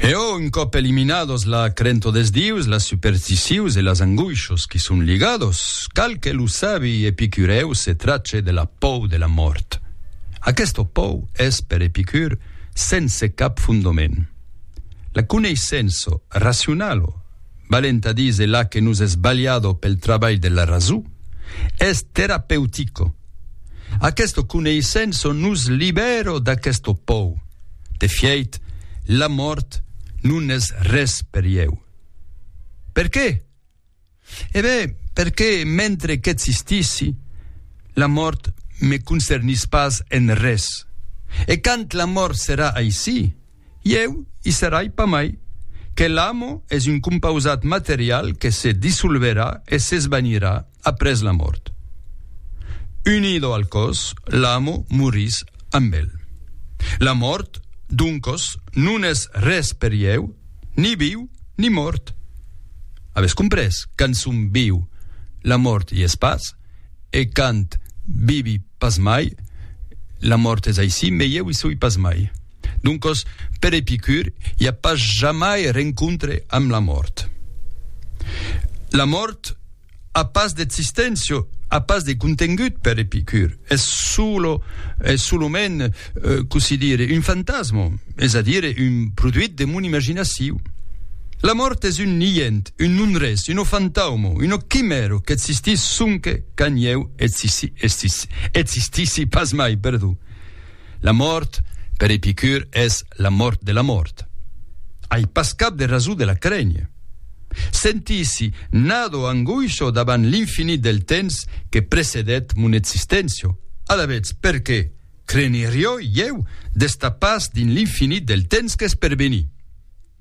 Eò, un còp eliminados la crento des dius, las supersticions e las angoishos qui son ligados, cal que lo sabi Epicurèu se trache de la pòu de la mòrt. Aquesta pòu es, per Epicur, sense cap fondoment. La coneissença racionalo, valent a díser la que nos es balhado pel trabalh de la rason, es terapeutica, Aquesto coneissenço nos libèro d'aquesto pòu. De fièit, la mòrt non es res per ieu. Per qué? E ben, perqué mentre qu'existissi, la mòrt me concernís pas en res. E quand la mòrt serà aicí, ieu i serai pas mai, que l'amo es un compausat material que se dissolverà e s'esvanirà, Après la mòrt. Unido al còs, l'amo morís amb el. La mòrt, doncos, non es res per ieu, ni viu ni mòrt. Avètz comprés? Quand som viu, la mòrt i es pas, e quand vivi pas mai, la mòrt es aicí, mai ieu i soi pas mai. Doncos, per Epicur, i a pas jamai rencontre amb la mòrt. La mòrt. A pas d'existentio, a pas de contengut per Epicur, es solo, es solament, cossí dire, un fantasmo, es a dire, un produit de mon imaginaciu. La mòrt es un niènt, un non-res, uno fantaumo, uno quimèro qu'existís sonque quand ieu existissi pas mai, perdon. La mòrt, per Epicur, es la mòrt de la mòrt. Ai pas cap de rason de la crénher. Sentissi, nado angoisho davant l'infinit del temps que precedèt mon existéncia. Alavetz, perqué crénherioi ieu d'estar pas dins l'infinit del temps qu'es per venir?